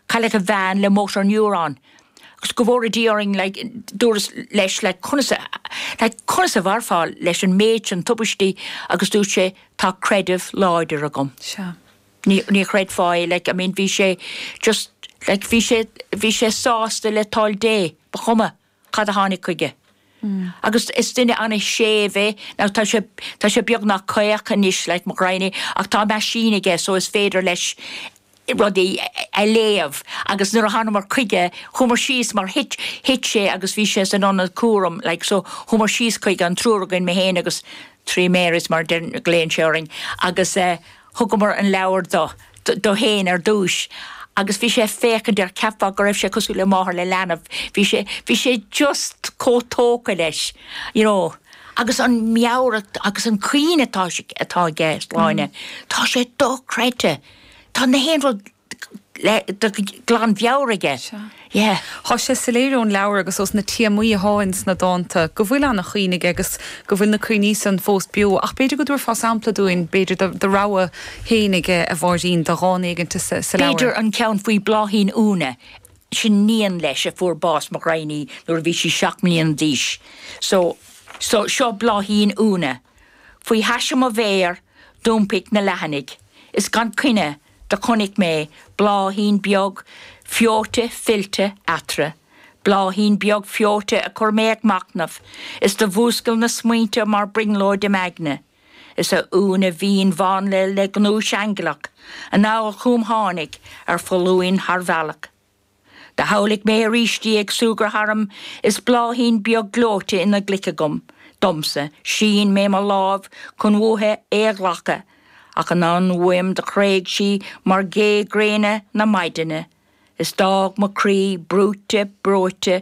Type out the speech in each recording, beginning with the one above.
Cailleadh a bhean le motor neuron agus go bhfóire Dia orainn dúras leis conas a mhairfeá leis an méid sin tubaistí agus dúirt sé tá creideamh láidir agam. Ní chreidfeá é like I mean bhí sé just like bhí sé sásta le toil Dé, ba chuma. cad a tháinig chuige. Agus is duine an-séimh é, now tá sé, tá sé beagnach caoch anois, like mo ghraidhn é, ach tá meaisín aige so is féidir leis rudaí a léamh agus nuair a thánamar chuige, chuamar síos mar thit, thit sé agus bhí sé san ionad cúraim like so chuamar síos chuige, an triúr againn, mé fhéin agus three Marys mar a deir, a ghlaonn sé orainn agus eh, Thugamar an leabhar dó, dó fhéin ar dtúis agus bhí sé a' féachaint air, cheapfá go raibh sé cosúil le máthair le leanbh, bhí sé, bhí sé just chomh tógtha leis you know agus an meabhair agus an cuimhne atá, atá aige, Sláine, tá sé dochreidte, tá na haon rud. glan mheabhair aige. Yeah. Tá sé soiléir ón leabhar agus ós na téamaí a thá ins na dánta go bhfuil ana chuimhne aige agus go bhfuil na cuimhní san fós beo ach b'fhéidir go dtabharfá sampla dúinn b'fhéidir do do rogha féinig a Mháirín de dhán éiginnte sa sa leabhar. B'fhéidir an ceann faoi Bhláithín Úna, sin iníon leis a fuair bás mo ghraidhn í nuair a bhí sí seacht mbliana d'aois. So so seo Bláithín Úna. Faoi thaise mo mhéar d'iompaigh na leathanaigh is gan coinne Do chonnaic mé bláithín beag feoite fillte eatarra, bláithín beag feoite a chuir mé ag machtnamh, is do mhúscail na smaointe mar brionglóid im aigne, is a Úna mhín mhánla le gnúis aingealach anall chúm tháinig ar foluain thar bhealach. Do shamhlaigh mé arís í ag súgradh tharm is bláithín beag gleoite ina glaic agam. Domsa, shín mé mo lámh chun uaithi é a ghlacadh, ach anonn uaim do thréig sí mar gha gréine na maidine, is d'fhág mo chroí brúite breoite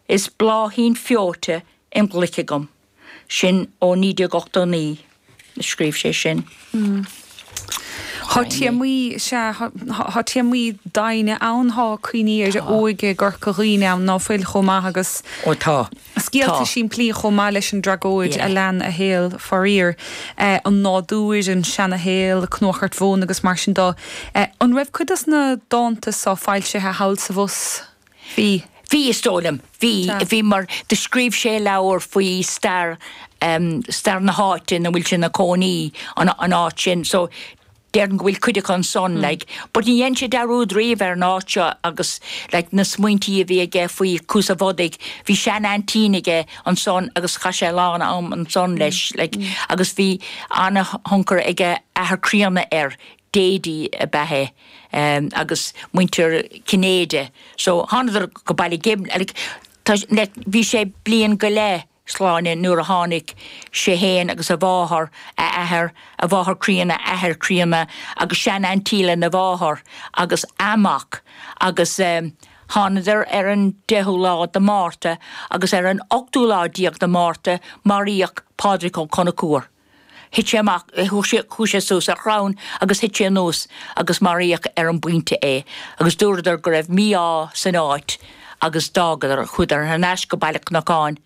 is bláithín feoite im ghlaic agam. sin ó 1989 a scríobh sé sin. Thá téamaí, sea, thá téamaí doimhne ann, thá cuimhní ar a óige i gCorca Dhuibhne ann ná fuil chomh maith agus scéalta simplí chomh maith leis an dtragóid a lean a shaol, faraor. An nádúir, an seanashaol, cnuchairt mhóna agus mar sin dó. An raibh cuid dos na dánta so foilsithe thall is abhus? Bhí. Bhí is dóigh liom. Bhí. Bhí mar do scríobh sé leabhar faoi stair, stair na háite ina bhfuil sé ina chónaí, an áit sin. So, déarfainn go bhfuil cuid acu ansan, like. But ní dhein sé dearúd riamh ar an áit seo agus like na smaointí a bhí aige faoi Cuas a' Bhodaigh, bhí sean-aintín aige ansan agus chaith sé a lán am ansan leis, like. Agus bhí ana-thionchar ag a athair críonna air. Daidi ab ea é agus muintir Cinnéide so thánadar go Baile Ghib like tá like bhí sé bliain go leith Sláine nuair a tháinig sé fhéin agus a mháthair, a athair, a mháthair críonna, a athair críonna agus sean-aintín le na mháthar agus a mac agus ehm thánadar ar an deichiú lá de Mhárta agus ar an ochtú lá déag de Mhárta maraíodh Pádraig Ó Conchúir. Thit sé amach, chuaigh sé suas ar chrann agus thit sé anuas agus maraíodh ar an bpointe é agus dúradar go raibh mí-ádh san áit agus d'fhágadar, chuadar thar n-ais go Baile an Chnocáin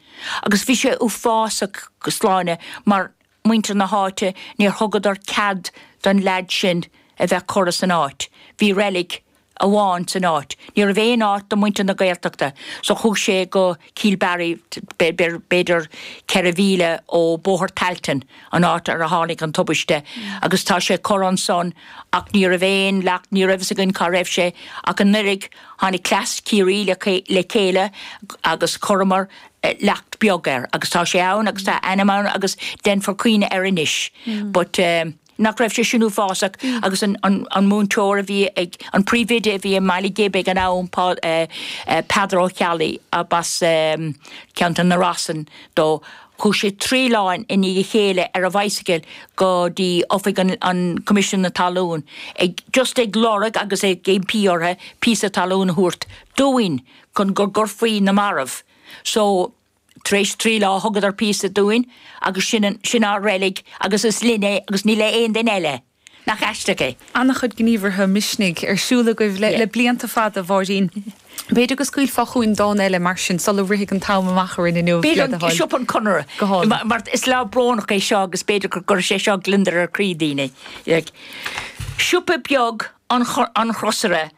agus bhí sé uafásach Sláine mar muintir na háite, níor thugadar cead don leaid sin a bheith curtha san áit, bhí reilig amháin san áit. Ní raibh aon áit do mhuintir na Gaeltachta so chuaigh sé go Cill Barry, b'fhéidir ceithre mhíle ó Bóthar Tailteann, an áit ar tháinig an tubaiste agus tá sé curtha ansan ach ní raibh aon leacht, ní raibh a fhios againn cá raibh sé ach anuiridh tháinig cleas Ciarraí le chéile agus chuireamar leacht beag air agus tá sé ann agus tá a ainm ann agus déanfar cuimhneamh air anois but eh. nach raibh sé sin uafásach agus an múinteoir a bhí ag, an príomhoide a bhí i mBaile Ghib ag an am, Peadar Ó Ceallaigh ab as ceantar na Rosann dó, chuaigh sé trí lá i ndiaidh a chéile ar a bhicycle go dtí Oifig an Choimisiúin na Talún ag just ag lorg agus ag impí orthu píosa talún a thabhairt dúinn chun go gcuirfí na mairbh. So. Tar éis trí lá thugadar píosa dúinn agus sin, sin ár reilig agus is linn é agus ní le aon duine eile. Nach aisteach é? Ana-chuid gníomhartha misnigh ar siúl agaibh le blianta fada, a Mháirín. B'fhéidir go scaoilfeá chugainn dán eile mar sin sula rithfidh an t-am amach orainn inniu, le do thoil. B'fhéidir, Siopa an Chonartha. Go hálainn. Mar is lá brónach é seo agus b'fhéidir go gcuirfidh sé seo gliondar ar chroí daoine. Siopa beag an Chrosaire.